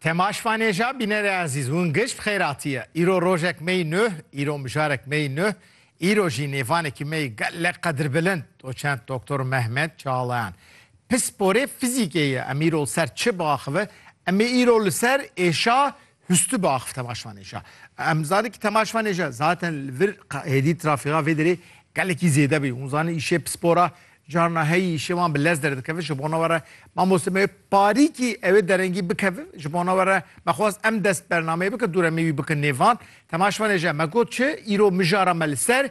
Temaş Vanêja bînerê ezîz hûn giş bi xêratî ye. Îro rojek meyî nuh, îro mijarekî meyî nuh, îro jî nêvanekî meyî gelek qedirbilind doçent Doktor Mehmet Çağlayan. Pisporê fizîkê ye. Em îro li ser çi biaxive? Em ê îro li ser êşa Hüstü bi axf temaşvanêja. Em zanê ki temaşvanêja zaten li vir hêdî trafîğa vê derê gelekî zêde bî. Hûn zanê îşê pispora carna heyî îşê wan bi lez derdikeve ji bona we re mamoste me parî kî ew ê derengî bikeve ji bona we re me xwest em dest bernameyê bike dûre me wî bikin nêvan temaşvanêja me got çi îro mijara me li ser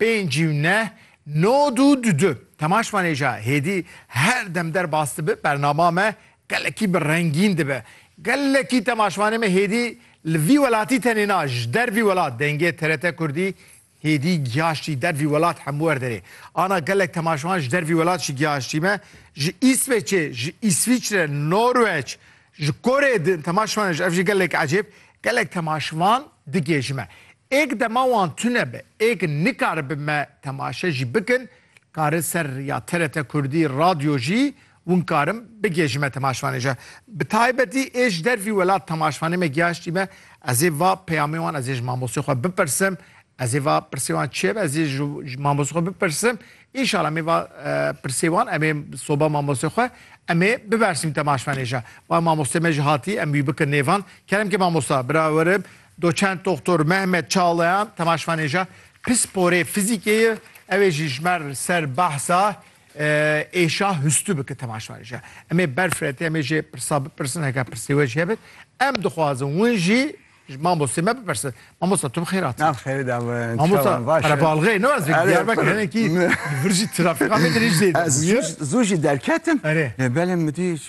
Pênc û neh, nod û du du. Temaş ma nêja hêdî her dem derbas dibe, bernama me gelekî bi rengîn dibe. Gelekî temaşvanê me hêdî li vî welatî tenê na, ji dervî welat dengê TRT Kurdî hêdî giyaştî dervî welat hemû wer derê. Ana gelek temaşvan ji dervî welat jî giyaştî me, ji Îsveçê, ji Îsvîçre, Norweç, ji Koreyê din temaşvan ji ev jî gelek ecêb, gelek temaşvan digê ji me. Êk dema wan tune be, êk nikaribe me temaşe jî bikin, karin ser ya TRT Kurdî Radyo jî win karin bigê ji me temaşvanê je. Bi taybetî ê ji dervî welat temaşvanê me giyaştî me, ez ê va peyamê wan ez ê ji mamostê xwe bipirsim, ez ê va pirsê wan çi ye be ez ê ji mamostê xwe bipirsim, înşala em ê va pirsê wan em ê soba mamostê xwe em ê bibersîm temaşvanê je. Bal mamostê me jî hatî em wî bikin nêvan. Kerem ke mamosta, bira werim, Doçent Doktor Mehmet Çağlayan temaşvanê ja pisporê fizîkê ye ewê jî ji mer ser behsa êşa hustû bike temaşvanê ja. Em ê berf re tê em ê jê pirsa bipirsin heke pirsê we jî hebit em dixwazin win jî ji mamostê me bipirsin. Mamosta tu bi xêr hatî. Nav xêrê da bin. Mamosta qerebalxê ne ez Diyarbekir hinekî li vir jî trafîka me dirêj zêde bûye. Zû jî derketim. Erê. Lê belê min dît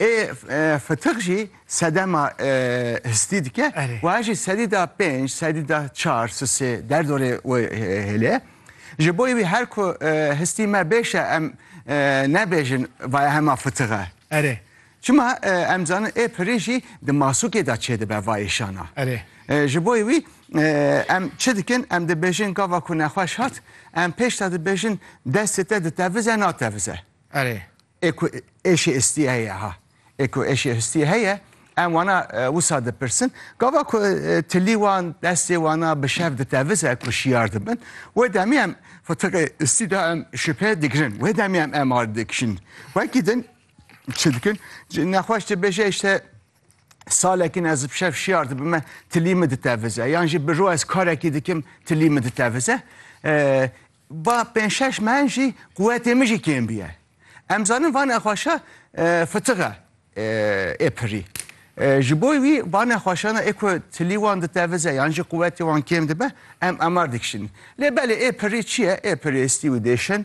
Ê fitik jî sedema histî dike û ez jî sedî da pênc, sedî da çar sisê derdorê wê hêlê. Ji bo wî her ku histî me bêş e em nebêjin vaya hema fitik e. Erê. Çima em dizanin ê pirî jî di masûkê de çêdibe va îşana. Erê. Ji bo wî em çi dikin em dibêjin gava ku nexweş hat em pêş de dibêjin destê te ditevize natevize. Erê. Ê ku êşê istî heye ha. Ê ku êşê istî heye em wana wisa dipirsin. Gava ku tilî wan destê wana bi şev ditevize ku şiyar dibin. Wê demê em fitiqê istî de em şipê digirin. Wê demê em MR dikişin. Wekî din çi dikin? Nexweş dibêje îşte Salekîn ez bi şev şiyar dibime tilî min ditevize yan jî bi ro ez karekî dikim tilî min ditevize. Ba pênc şeş mehin jî quwetê min jî kêm bûye. Em zanin van nexweşa fitixe ê pirî. Ji bo wî van nexweşana ê ku tilî wan ditevize yan jî quwetê wan kêm dibe em amar dikişînin. Lê belê ê pirî çi ye? Ê pirêstî û dêşin